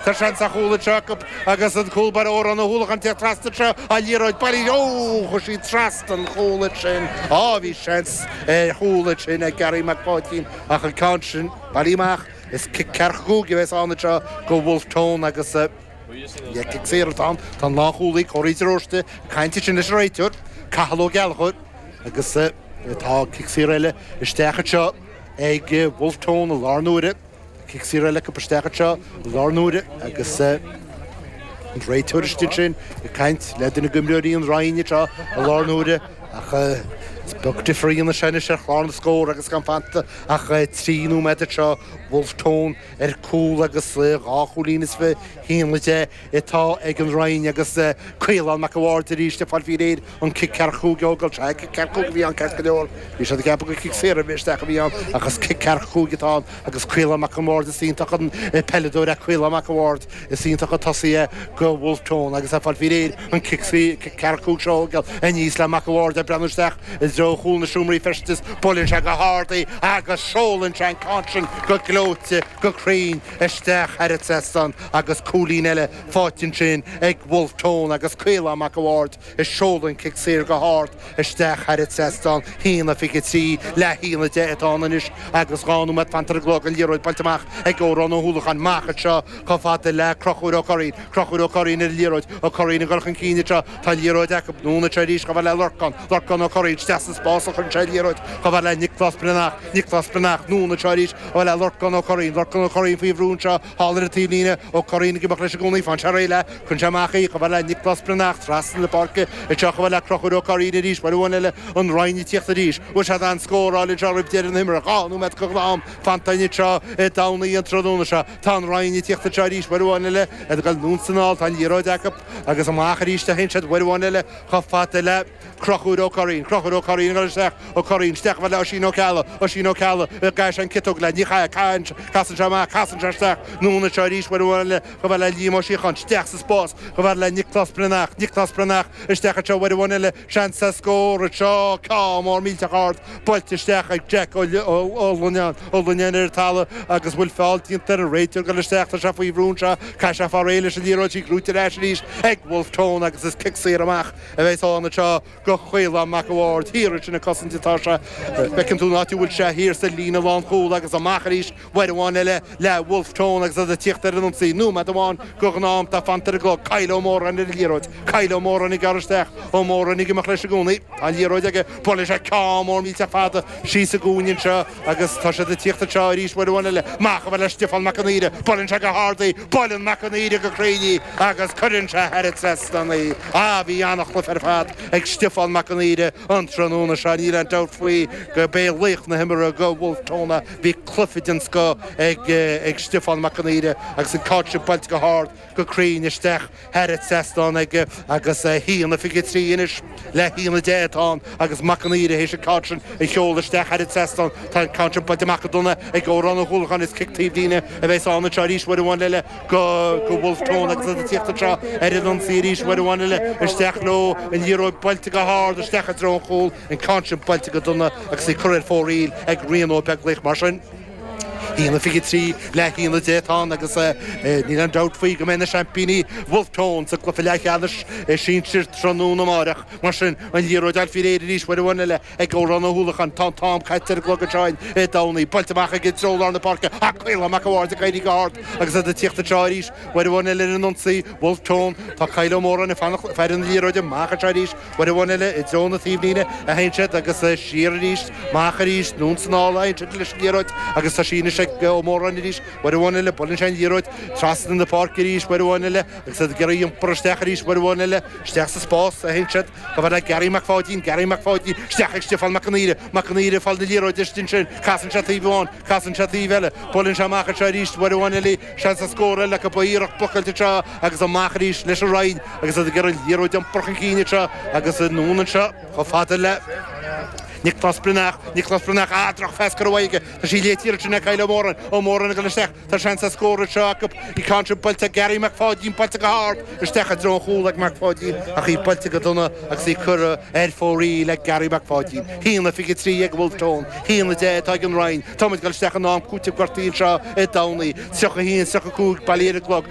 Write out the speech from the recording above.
Tá seans ar chúl anseo acu agus an cúl báire Odhrán Ó hUallacháin ag tíocht trasna anseo, an liathróid bailithe, óóó, chuaigh sí trasna an chúil ansin. Á, bhí seans ar chúl ansin ag Garry Mac Pháidín ach an ceann sin bailithe amach. Is cic ceathracha cúig a bheas ann anseo go Wolfe Tone agus is cic saor atá ann, tá an lánchúlaí, Corey de Róiste, ag caint ansin leis an réiteoir, Cathal Ó Gallchóir agus tá cic saor eile isteach anseo ag Wolfe Tone i láthair na huaire. Cic saor eile acu isteach anseo i láthair na huaire agus an réiteoir istigh ansin ag caint le duine de imreoirí an Rinn anseo i láthair na huaire ach is beag difear a dhéanann sé anois ar chlár na scór agus gan fanta ach trí nóiméad anseo, Wolfe Tone ar chúl agus dhá chúilín is fiche, haon a deich, atá ag an Rinn agus Caolán Mac an Bhaird arís ag fáil faoi réir. An cic ceathracha cúig a thógáil, is cic ceathracha cúig a bhí ann ceart go leor. Bhí sé ag ceapadh gur cic saor a bhí isteach a bhí ann ach is cic ceathracha cúig atá ann agus Caolán Mac an Bhaird is iontach an peileadóir é Caolán Mac an Bhaird. Is iontach an tosaí é go Wolfe Tone agus é ag fáil faoi réir an cic ceathracha cúig seo a thógáil, aníos le Mac an Bhaird ag breathnú isteach i dtreo chúl na seomraí feistis. Buaileann sé go hard í agus seolann sé an ceann sin go gleoite go cruinn isteach thar an trasnán agus cúilín eile faighte ansin ag Wolfe Tone agus Caolán Mac an Bhaird. Is seoladh an cic saor go hard isteach thar an trasnán, haon fiche a trí le haon a deich atá ann anois agus dhá nóiméad fanta ar an gclog, an liathróid buailte amach ag Odhrán Ó hUallacháin. Amach anseo chomh fada le Crochúr Ó Curraoin. Crochúr Ó Curraoin ar an liathróid. Ó Curraoin ag dul chun cinn anseo. Tá an liathróid acu. Anonn anseo arís chomh fada le Lorcán. Lorcán Ó Curraoin isteach sa spás a chuireann sé an liathróid chomh fada le Nioclás Breathnach. Nioclás Breathnach. Anonn anseo arís chomh fada le Lorcán Ó Curraoin. Lorcán Ó Curraoin faoi bhrú anseo. Thall ar an taobhlíne Ó Curraoin ag imeacht leis i gcónaí faigheann sé réidh léi, cuireann sé amach í chomh fada le Nioclás Breathnach trasna na páirce anseo chomh fada le Crochúr Ó Curraoin arís uair amháin eile, an Rinn ag tíocht arís. An bhfaighidh siad aon scór eile anseo roimh deireadh na himeartha, dhá nóiméad go ghnátham fanta anseo Dé Domhnaigh an tráthnóna seo. Tá an Rinn ag tíocht anseo arís uair amháin eile, iad ag dul anonn is anall, tá an liathróid acu agus amach arís a théann siad uair amháin eile chomh fada le. Crochúr Ó Curraoin, Crochúr Ó Curraoin, ag dul isteach, Ó Curraoin, isteach chomh fada le Oisín Ó Ceallaigh, Oisín Ó Ceallaigh, an gcaithfidh sé an chiotóg léi, ní chaithfidh, Casann sé amach, Casann sé isteach, anonn anseo arís, uair amháin eile, chomh fada le Liam Ó Síocháin, Isteach sa spás, chomh fada le Nioclás Breathnach, Nioclás Breathnach, Isteach anseo, uair amháin eile, seans ar scór anseo, ceann mór millteach ard, buailte isteach ag Jeaic Ó Lonáin, Ó Lonáin ar an talamh, agus an bhfuil feall déanta air, an réiteoir ag dul isteach, Tá sé faoi bhrú anseo, caithfidh sé fáil réidh leis an liathróid, is í gnóite ar ais arís ag Wolfe Tone, Agus is cic saor amach, a bheas ann anseo go Caolán Mac a' Bhaird, thiar ansin ag cosaint atá sé. Feiceann tú an áit a bhfuil sé, thiar sa líne lánchúil agus amach arís uair amháin eile le Wolfe Tone agus iad ag tíocht ar an ionsaí. Nóiméad amháin go ghnátham atá fanta ar an gclog, Kyle Ó Móráin ar an liathróid, Kyle Ó Móráin ag gearradh isteach, Ó Móráin ag imeacht leis i gcónaí, tá an liathróid aige, buaileann sé ceann mór millteach fada síos sa gcúinne anseo, Agus tá siad ag tíocht anseo arís uair amháin eile. Amach a fhad le Stiofán Mac an Aoire. Buaileann sé go hard í. Buaileann Mac an Aoire go cruinn í agus cuireann sé thar an trasnán í. Á, bhí an-chluiche ar fad ag Stiofán Mac an Aoire an tráthnóna seo. Níl aon dabht faoi gurb é laoch na himeartha go Bhulf Tón. Bhí cluiche den scoth ag Stiofán Mac an Aoire agus an ceann sin buailte go hard, go cruinn isteach. Thar an trasnán aige agus haon a 23 anois le haon a 10 atá ann agus Mac an Aoire théis an ceann sin a sheoladh isteach thar an trasnán tá an ceann seo buailte amach go dona ag Odhrán Ó hUallacháin is cic taobhlíne a bheas ann anseo arís uair amháin eile go Wolfe Tone agus iad ag tíocht anseo ar an ionsaí arís uair amháin eile isteach leo an liathróid buailte go hard isteach i dtreo an chúl an ceann sin buailte go dona agus í curtha ar fóraoil ag Rian Ó Beaglaoich mar sin. Haon a 23 le haon a 10 atá ann agus níl aon dabht faoi go mbeidh na seaimpíní Bhulf Tón sa gcluiche leathcheannais sinsir tráthnóna amárach. Mar sin, an liathróid ar fionraí arís uair amháin eile ag Odhrán Ó hUallacháin. Tá an t-am caite ar an gclog anseo i dTamhnaigh. Buailte amach i dtreo lár na páirce ach Caolán Mac a' Bhaird ag éirí go hard agus iad ag tíocht anseo arís uair amháin eile ar an ionsaí. Bhulf Tón, tá Kyle Ó Móráin ag fáil na liathróide amach anseo arís. Uair amháin eile, i dtreo na taobhlíne, a théann siad agus é siar arís, amach arís, anonn is anall, a théann siad leis an liathróid agus tá sí anois ag Ó Móráin arís, uair amháin eile, buaileann sé an liathróid, trasna na páirce arís, uair amháin eile, agus iad ag iarraidh iompar isteach arís, uair amháin eile, isteach sa spás, a théann siad, chomh fada le Garry Mac Pháidín, Garry Mac Pháidín, isteach ag Stiofán Mac an Aoire, Mac an Aoire ag fáil na liathróide istigh ansin, casann sé taobh amháin, casann sé taobh eile, buaileann sé amach anseo arís, uair amháin eile, Seans ar scór eile acu ach an iarracht blocáilte anseo agus amach arís leis an Rinn agus iad ag iarraidh an liathróid a iompar chun cinn anseo agus anonn anseo chomh fada le Nioclás Breathnach. Nioclás Breathnach, ach drochphas curtha aige. Tá sé léite ansin ag Kyle Ó Móráin. Ó Móráin ag dul isteach. Tá seans ar scór anseo acu. Bhí an ceann sin buailte ag Garry Mac Pháidín, buailte go hard isteach i dtreo an chúl ag Mac Pháidín ach í buailte go dona agus í curtha Ar fóraoil le Garry Mac Pháidín, haon a 23 ag Wolfe Tone, haon a 10 atá ag an Rinn, Táimid ag dul isteach in am cúitimh gortaithe anseo i dTamhnaigh, 31, 35 bailithe ar an gclog,